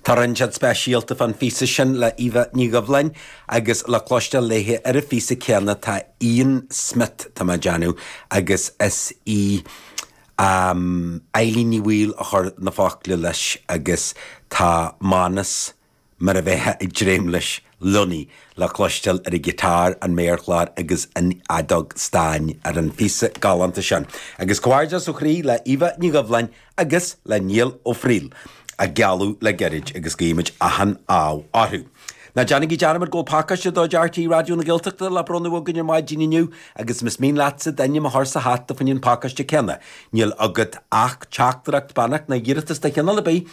Tá rud inteacht speisialta fán phíosa sin le Eva Ní Dhoibhleáin agus le cloisteáil léi ar an phíosa céanna tá Ian Smith, tá mé ag déanamh, agus is í Eilín Ní Bhaoill a chuir na focla leis agus tá Mánus, mar a bheifeá ag dréim leis, Lunny le cloisteáil ar an ghiotár, an méarchlár agus an fheadóg stáin ar an phíosa galánta sin, agus comhghairdeas ó chroí le Eva Ní Dhoibhleáin agus le Niall Ó Frighil, a gealladh le gairid, agus guímid achan ádh orthu. Ná déanaigí dearmad go bhfuil pacáiste de chuid RTÉ Raidió na Gaeltachta le bronnadh againn ar maidin inniu, agus más mian leatsa d'ainm a chur sa hata fá choinne an phacáiste céanna, níl agat ach teachtaireacht beannacht nó iarratas de chineál ar bith,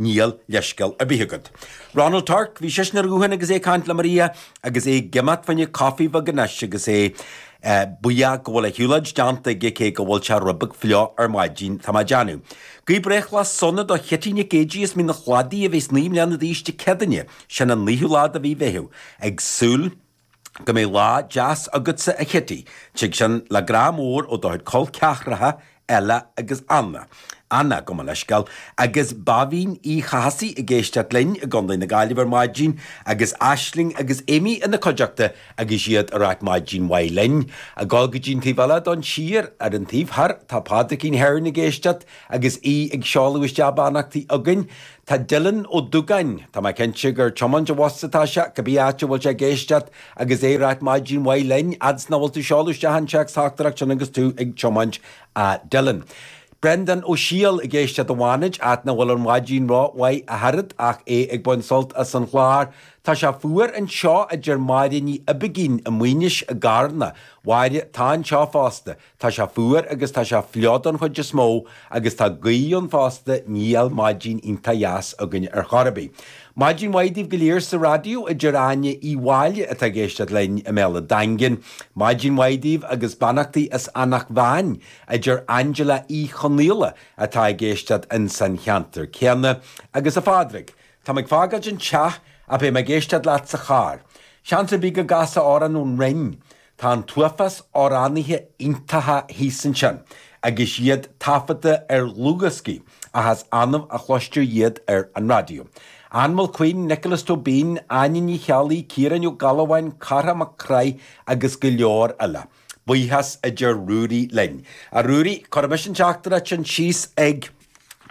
Níl leithscéal ar bith agat. Ronald Torc, bhí seisean ar an ghuthán agus é ag caint le Maria agus é ag imeacht fá choinne coffee beag anois agus é buíoch go bhfuil a shiúlóid déanta aige cé go bhfuil sé rud beag fliuch ar maidin. Tá mé ag déanamh. Guigh breithlá sona do Chití Nic Géidigh as Mín an Chladaigh a bhéas naoi mbliana d'aois Dé Céadaoine. Sin an naoú lá de mhí Mheithimh. Ag súil. Go mbeidh lá deas agatsa, a Chití. Tig sin le grá mór ó do chuid col ceathracha, Ella agus Anna. Anna, gabh mo leithscéal. Agus Béibhinn Uí Chathasaigh ag éisteacht linn i gContae na Gaillimhe ar maidin, agus Aisling agus Amy ina cuideachta agus iad ag rá maidin mhaith linn. Ag dul go dtí an taobh eile don tír, ar an taobh thoir, tá Pádraicín Hearn ag éisteacht agus í ag seoladh isteach beannachtaí againn. Tá Dylan Ó Dúgáin. Tá mé cinnte gur tiomáint an bhus atá sé, cibé áit a bhfuil sé ag éisteacht, agus é ag ráit maidin mhaith linn, fhad 's nach bhfuil tú ag seoladh isteach an téacsteachtaireacht sin agus tú ag tiomáint, a Dylan. Brendan Ó Siadhail ag éisteacht i bhFánaid, áit nach bhfuil an mhaidin ró mhaith ach oiread, ach é ag baint sult as an chlár. Tá sé fuar anseo, a deir Máire Ní Oibicín i Maínis i gCarna. A Mháire, tá anseo fosta. Tá sé fuar agus tá sé fliuch don chuid is mó agus tá gaoth ann fosta, níl maidin iontach dheas againn ar chor ar bith. Maidin mhaith daoibh go léir sa raidió, a deir Áine Uí Mháille atá ag éisteacht linn i mBéal an Daingin, maidin mhaith daoibh agus beannachtaí as Eanach Mheáin, a deir Angela Uí Chonaola atá ag éisteacht insan cheantar céanna, agus a Phádraig, tá mé ag fágáilt an teach ach beidh mé ag éisteacht leat sa charr. Seans ar bith go gcasfá amhrán ón Rinn Tá an t-uafás amhránaithe iontacha thíos ansin agus iad taifeadta ar dhlúthdhioscaí ach is annamh a chloistear iad ar an raidió. Ann Mulqueen, Nioclás Tóibín, Áine Ní Cheallaigh, Ciarán Ó Gealbháin, Cárthach Mac Craith agus go leor eile. Buíochas a deir Ruairí linn. A Ruairí, cuirfidh mise an teachtaireacht sin síos ag.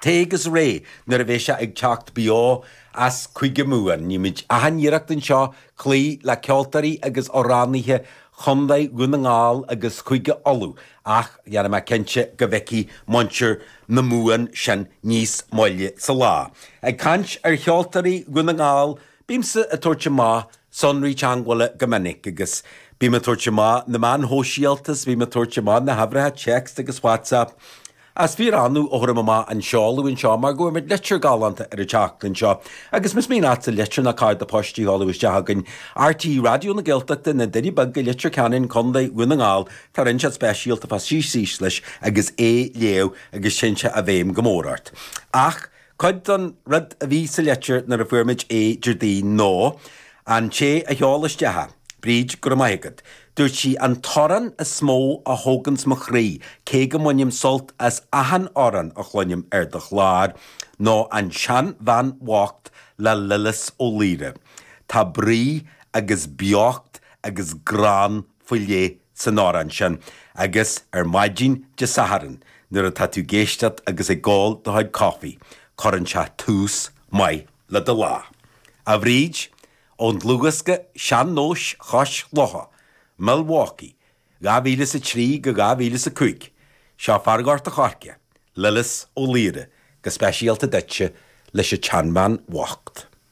Teacht agus ré nuair a bheidh sé ag teacht beo as Cúige Mumhan. Ní muid achan iarracht anseo cloí le ceoltóirí agus amhránaithe Chondae Dhún na nGall agus Chúige Uladh ach déanfaidh mé cinnte go bhfeicfidh muintir na Mumhan sin níos moille sa lá. Ag caint ar cheoltóirí Dhún na nGall, Bímse ag tabhairt amach sonraí teangmhála go minic, agus bím ag tabhairt amach na meáin shóisialta, is bím ag tabhairt amach na huimhreacha téacs agus WhatsApp. Is fíor-annamh a thabhraim amach an seoladh anseo, mar go bhfuair muid litir galánta ar an tseachtain seo, agus más mian leatsa litir ná cárta poist a sheoladh isteach chugainn, RTÉ Raidió na Gaeltachta, Na Doirí Beaga, Leitir Ceanainn, Co. Dhún na nGall, tá rud inteacht speisialta fá suí síos leis agus é a léamh, agus téann sé i bhfeidhm go mór ort. Ach. Cuid den rud a bhí sa litir nuair a fuair muid é Déardaoin ná an té a sheol isteach é, Bríd, go raibh maith agat, dúirt sí, an t-amhrán is mó a thóganns mo chroí, cé go mbainim sult as achan amhrán a chluinim ar do chlár, ná An tSean Bhean Bhocht le Lillis Ó Laoire. Tá brí agus beocht agus greann faoi leith san amhrán sin, agus ar maidin Dé Sathairn nuair atá tú ag éisteacht agus ag ól do chuid caife, cuireann sé tús maith le do lá. A Bhríd, ón dlúthdhiosca Sean Nós Chois Locha, Milwaukee, 2003 go 2005, seo fear Ghort a' Choirce, Lillis Ó Laoire, go speisialta duitse, leis an tseanbhean bhocht.